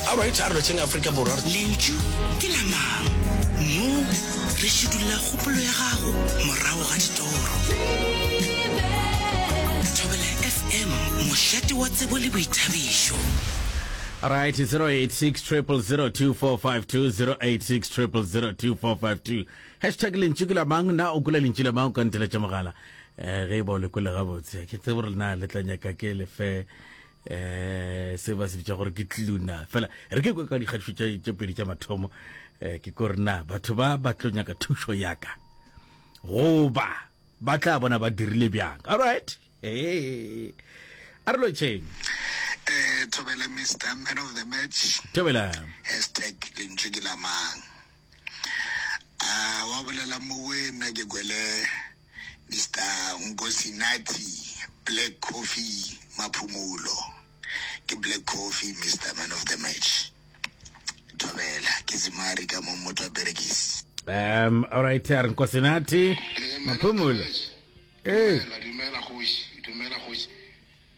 aowa e tharo letseng aforika borwa lentšu ke la mang mo re šidulla kgopolo ya gago morago ga ditoro thobela fm mošate wa tsebo le boithabišo Right, 086 0002452, 086 0002452. Hashtag lentšu ke la mang, na o kula lentšu la mang o ka nteletša mogala. Eh, ge e ba o le kule gabotse. Ke tsebe gore na le tla nyaka ke lefe eh se ba se bitša gore ke tluna fela re ke kwe ka dikgatišo tše pedi tša mathomo eh, ke kore na batho ba ba tlo nyaka thušo yaka goba ba tla bona ba dirile bjang all right hey. a re lotšheng eh, thobela mr man of the match thobela hashtag lentšu ke la mang Ahh wa bolela mowe nna ke kwele Mister Nkosinathi Black Coffee Maphumulo ke Black Coffee Mister Man of the Match Thobela ke Zimari ka mo motho a perekisi Um, all right, a re Nkosinathi Maphumulo. Hey. Dumela, dumela, kgoši, dumela, kgoši.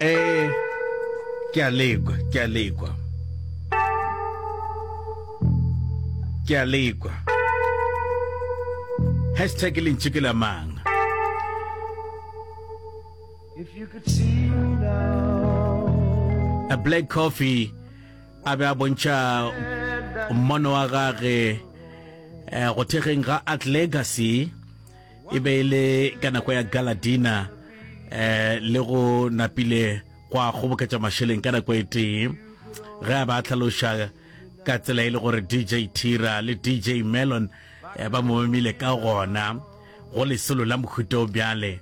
Ee, ke a lekwa, ke a lekwa. Ke a lekwa. Hashtag lentši ke la mang? If you could see me now. A black coffee a be a bontšha mmono wa gage eh, go thekgeng ga art legacy e be e le ka nako ya galadina eh le go napile gwa kgoboketša mašeleng ka nako e tee ge a ba a tlhaloša ka tsela e le gore dj tira le dj melon eh, ba mo memile ka gona go lesolo la mohuto bjale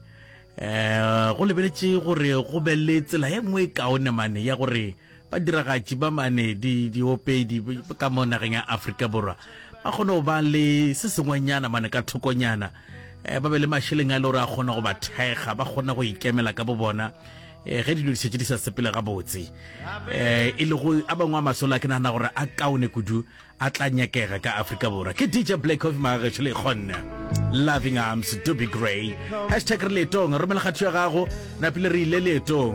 eh go lebeletše gore go be le tsela e nngwe e kaone mane ya gore Badiragatši ba mane di diopedi ka mo nageng ya Afrika Borwa ba kgone go ba le se sengwenyana mane ka thokonyana eh, ba be le mašeleng a le gore a kgona go ba thekga ba kgona go ikemela ka bo bona eh, ge dilo dišetse di sa sepele gabotse um e lego a bangwe a masola ke nagana gore a kaone kudu a tla nyakega ka afrika borwa ke dj black coffee magagešo le kgonne loving arms to be grey hashtag re leetong romela kgatho ya gago napile re ile leetong